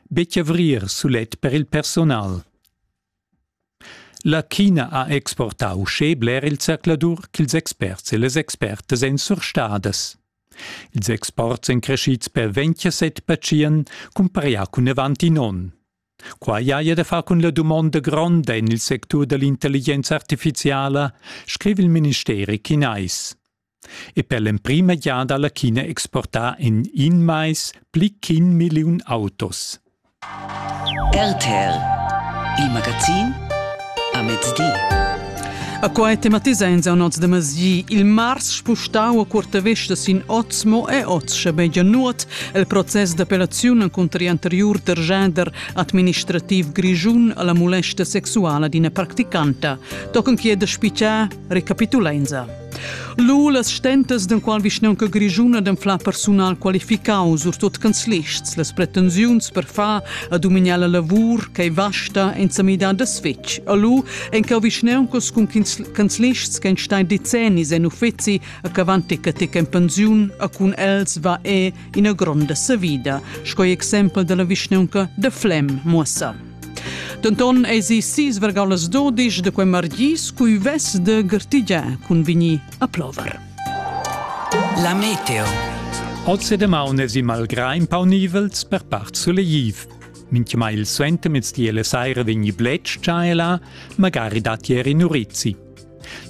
betg avrir sulet per il personal. La China ha exportà uschè bler il zercladur ch'ils experts e las expertas èn surstadas. Ils exports èn crescids per 27 patient cumparià cun avant in onn. Quai haja da far cun la dumonda gronda en il sectur da l'intelligenza artifiziala, scriva il ministeri chinais. e per l'emprima giada alla China exportar in in mais pli ch'in milliun autos. RTL, il magazin a mezdi. A quai tematisa in zaunots de masi. Il mars spustau a curta vesta sin oz mo e oz schabegia nuot el proces d'appellaziun contra anteriur terjader administrativ grigiun alla molesta sexuala d'ina practicanta. Tochen chiede spicia recapitulenza. Lu las stentas d'enqual vischnaunca grischuna d'anflar persunal qualificau surtut canzlists, las pretensiuns per far a dumignar la lavur ch'ei vasta en sa midar da svetg. A lu ein cau vischnauncas cun canzlists che ein stai decennis en uffizi a cavanti catec en pensiun a cun els va è ina gronda savida, sco exempel dalla vischnaunca da Flem Muossa. Denton eisi sis vergau las dodisch de quei margis cui vess de gertigiar cun vigni a plover. La meteo. Oz demaun es i malgrà in pau nivels per part suleiv. Mintgemai il suentermezdi e la saira vegni bletsch già e là, magari datti er in urizzi.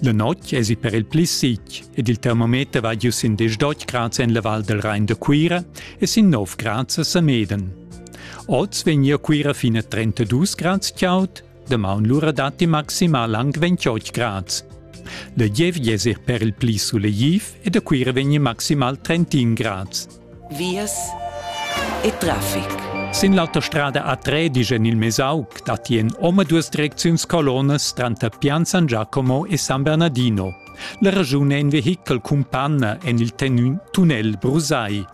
La notg esi per il pli sitg ed il termometer va giu sin 18 grads en la Val del Rain da Cuira e sin 9 grads a Sameden. Oz vegnia Cuira fin a 32 grads chaud, damaun lura datti maximal anc 28 grads. La giev esi per il pli sulegtiv e da Cuira vegni maximal 31 grads. vias e traffic. Sin l'autostrada A3 digen il Mesauc datien omaduas direcziuns colonas tranter Pian San Giacomo e San Bernardino. La ragiun è in vehichel cun panna en il tunnel Brusai.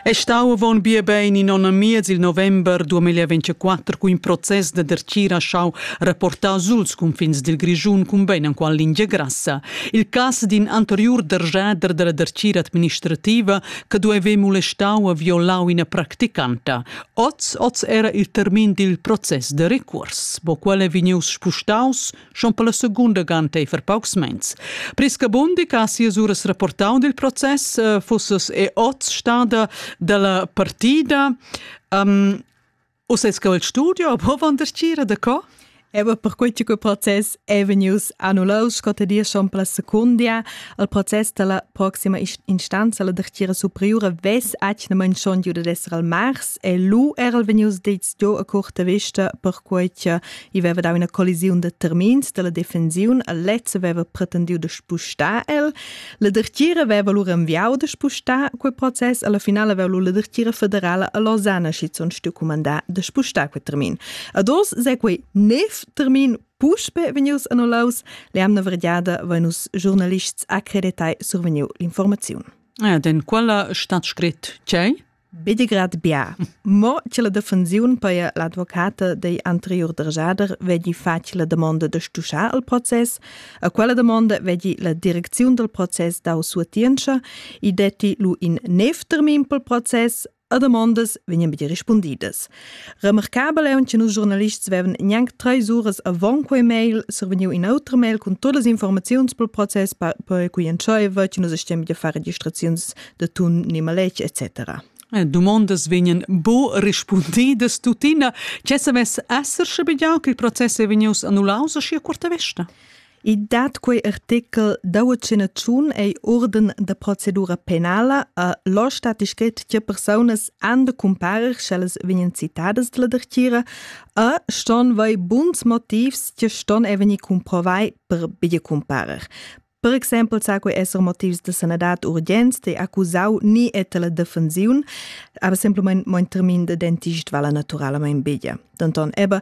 È stau avon bia bein in onn e miez il november 2024 cu in process da dertgir ha schau rapportar suls cunfins dil Grischun cumbein enqual lingia grassa. Il cass d'in anteriur dergiader dalla dertgira administrativa che dueva molestau e violau ina practicanta. Oz, oz era il termin dil process de recurs. Bo quel è vegnius spustaus schon per la segunda ganteifer paucs mens. Prisca Bundi, che ha sias uras rapportau dil process, eh, fusses e oz stada dalla partida. Um, Uses che il studio può vandercire da co? Evo per quei che process è vegnius annullaus scotta dir schon per la seconda al proces della prossima instanza la dertira superiore ves acnament schon giuda d'essere al mars e lu era vegnius detto a curta vista per quei che I veva dau ina collisiun de termins della defensiun, a lezza veva pretendiu de spustar el. La dertgira veva lur enviau de spustar quel process, alla finale veva la dertgira federala a Lausanne schizun stu comandar de spustar quel termin. Ad os se quei nef termin puspe vegnius annullaus, le amna verdiada venus giornalists accreditai survegniu l'informaziun. Eh, den quella stat scrit tgei? Bedegrad bia. Mo che la defensiun per l'advocata dei anterior derasader vegli facile domanda de stuschar al process, a quella domanda vegli la direcziun del process dau suatientscha e detti lu in nev termin pel process a domandas vegnan be rispundidas. Remarcabel è un che nus giornalists vevan gnanc treis uras avon quei mail survegniu in autre mail con todas les informaziuns pel process per cui entscheiva che nus stiam da fare registraziuns de tun ni maletg etc. Eh, dumondas vegnan bo rispundidas tuttina. Che savess esser sche bigliau che il process è vegnius annullaus a scia curta vesta? I dat quei artichel da vacinaziun ei urden da procedura penala a lo stat scrit che personas han de cumparer sch'ellas vegnan citadas dalla dertira a ston vai buns motivs che ston e venir cumprovai per bia cumparer. Per exempel sa quei esser motivs de sanadad urgent de accusau ni e tela defensiun, aber semplicemente mein termin de dentist vala naturalmente bia. Denton, eben,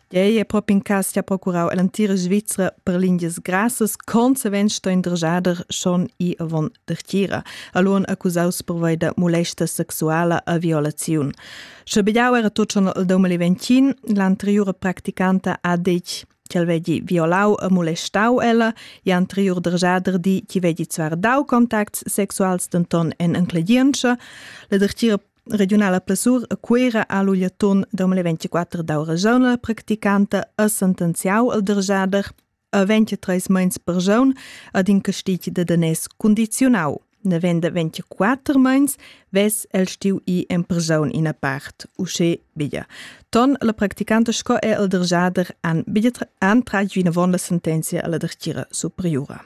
Tgei è propi in cass che ha procurau all'antira Svizra per lingias grassas consequent sto indrjader schon i avon dertgira, allora accusaus per da molesta sexuala a violaziun. Schabegiau era tot schon al 2020, l'anteriore practicanta ha detg che el vegli violau e molestau ella, e anterior derjader di che vegli zvar dau contacts sexuals denton en encledientscha, la dertgira Regiunala Plessur a Cuira ha l'ugliatun 2024 dau ragiun la practicanta a sentenziau al derjader a 23 meins per jaun ad in castig de danès condicionau. Ne venda 24 meins, ves el stiu i en per jaun ina part, usce biglia. Ton la practicanta sco è el derjader an, biglia an tratg vinavon la sentenzia alla dertira superiora.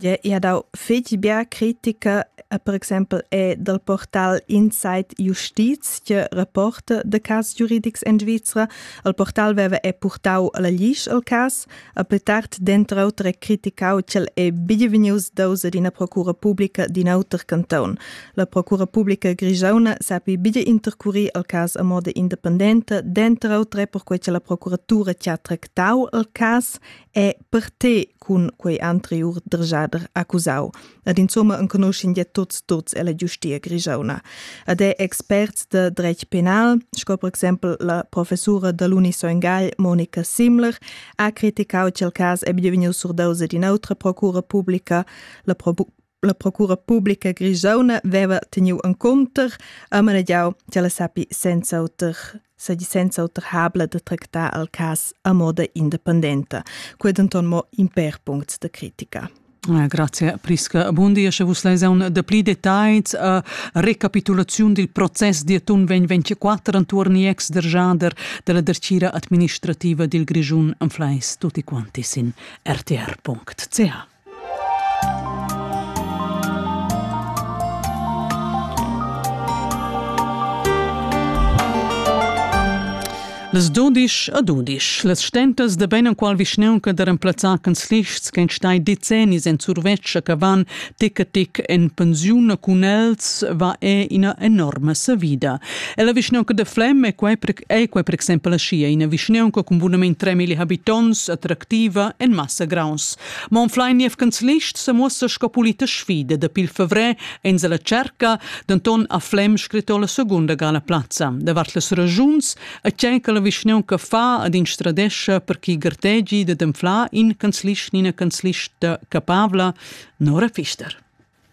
Ia dau fetg bia critica, per exempel è dal portal Inside Justiz, tge rapporta de cas giuridics en Svizra. Il portal veva è purtau la glisch al cas, a pli tard denter auter è criticau ch'el è bienvegnius daus ad ina procura publica d'in auter canton. La procura publica grigiauna sapi bia intercurir al cas a moda independenta, denter auter è perquei che la procuratura ti ha tractau al cas è per te cun quei anteriur dergiader accusau ed insomma enconuschin ja tuts tuts ella giustia grigiauna ed è experts de dretg penal sco per exempel la professura da l'Uni Soingal Monica Simler ha criticau ch'el cas è bienvegniu surdaus ad in'autra procura publica la La procura publica grisauna veva teniu encunter e manegiau che la sappi senza auter segi senza auter habla de tractar al cas a moda independenta. Quei denton mo in per punct de critica. Eh, grazie Prisca Bundi, sche vus leis un de pli details a eh, recapitulaziun dil process di atun vegn 24 antuorn ex der Jader della dercira administrativa dil Grischun am fleis tutti quanti sin rtr.ch. Las dudisch e dudisch, las stentas da bein enqual vischnaunca da remplazzar canzlists che stai decennis en survetscha che van tic a tic en pensiun cun els va è ina enorma savida. E la vischnaunca de Flem è quei è quei per exempel sia ina vischnaunca cun bunament 3.000 habitonts attractiva en massa graus. Mon Fleinief Canzlist se muossa sco polita sfida dapi il fevrè en la cerca, denton a Flem scritto la segunda gala plazza. Davart las ragiuns e tgei che la vischnaun che fa ad instradescha per chi gartegi da d'enflar in canzlist ni ina canzlista capabla, Nora Fister.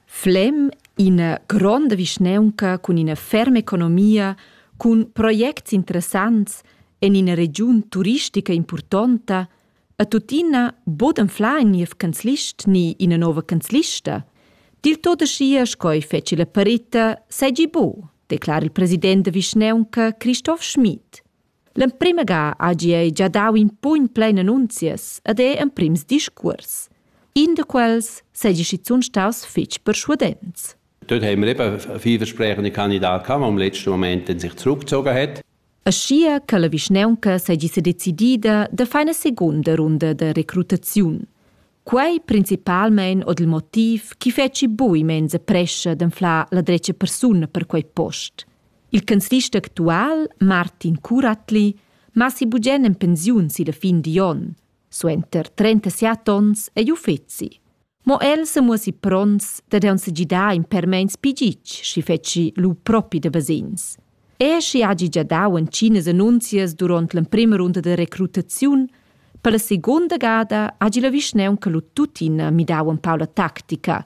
Flem ina gronda vischnaunca cun ina ferma economia, cun projects interessants en ina regiun turistica importanta, E tuttina bod anflà in niev canzlist ni ina nova canzlista. Dil tot aschia sco ei feci la parita seigi bu, declara il president da vischnaunca Christoph Schmid. L'emprema ga hagi ei già dau in pugn plein annunzias ed ei emprims discuors. In da quels seigi schizun staus fetg persuadents. Dort haben wir eben vielversprechende Kandidaten gehabt, die im letzten Moment sich zurückgezogen hat. Aschia che la vischnaunca seigi sedecidida da far ina secunda runda da recrutaziun. Quei principalmein ord il motiv chi fetschi bui menza prescha d'anflar la dretga persuna per quei post. Il canzlist actual, Martin Curatli, massi bugen en pensiun si la fin di onn. Suenter 37 onns ei uffeci. Mo el se muosi prons dad on se gidar in permeins pigitsch, schi fetschi lu propi de basins. E schi hagi gia dau entginas annunzias duront l'emprima runda de recrutaziun, per la seconda gada hagi la vischneunca lu tuttina midau un pau la tactica,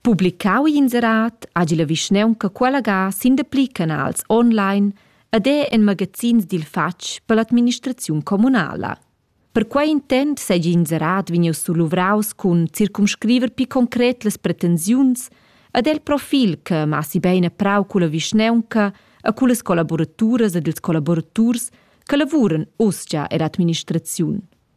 Publicau inserat hagi la vischnaunca qualagà sin dapli canals online ed è en magazins dil fatg per l'administraziun communala. Per quei intent seigi inserat vegnius suluvraus cun circumscriver pi concret las pretensiuns ed el profil che massi bein a prau culla vischnaunca e cullas collaboraturas ed ils collaboraturs che lavuran uschia er administraziun.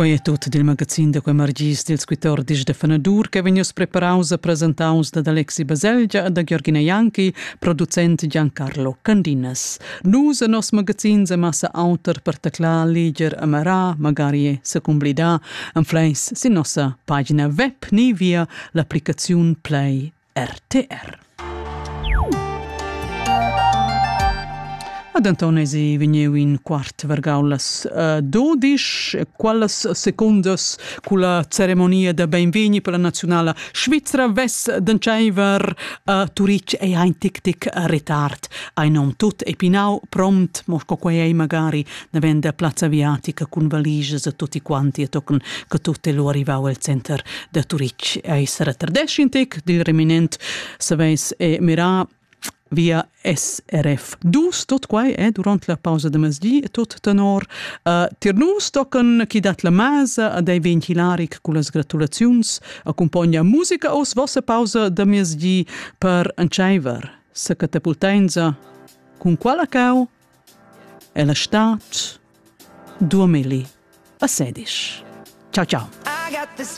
quei è tutto dil magazin da quei margis dils 14 de Fanadur che vegnius preparaus a presentaus da Alexi Baselgia e da Giorgina Janki, producent Giancarlo Candinas. Nus e nos magazin se massa auter per teclar, liger, amarar, magari e secumblidar Anfleis sin nossa pagina web ni via l'applicaziun Play RTR. Ad Antonesi vegniu in quart vargaulas uh, dodisch, quellas secundas culla ceremonia da beinvegni per la nazionala svizra vess d'entscheiver a uh, Turitg ei ein tic tic retard. Ein om tut epinau prompt, mo sco quei ei magari na venda plazza aviatica cun valigias a tutti quanti e tochen che tutto è lu arrivau al center da Turitg. Ei sarà tardesc in tec dil reminent, saveis e mirà via SRF 2, tot quai è eh, durant la pausa de masdi, tot tenor uh, tir nus tochen chi dat la masa ad ei vegn hilaric con las gratulaziuns accompagna musica os vossa pausa de masdi per entscheiver. Sa catapultenza cun quala cau? Ella stad durmeli a sedisch. Ciao, ciao.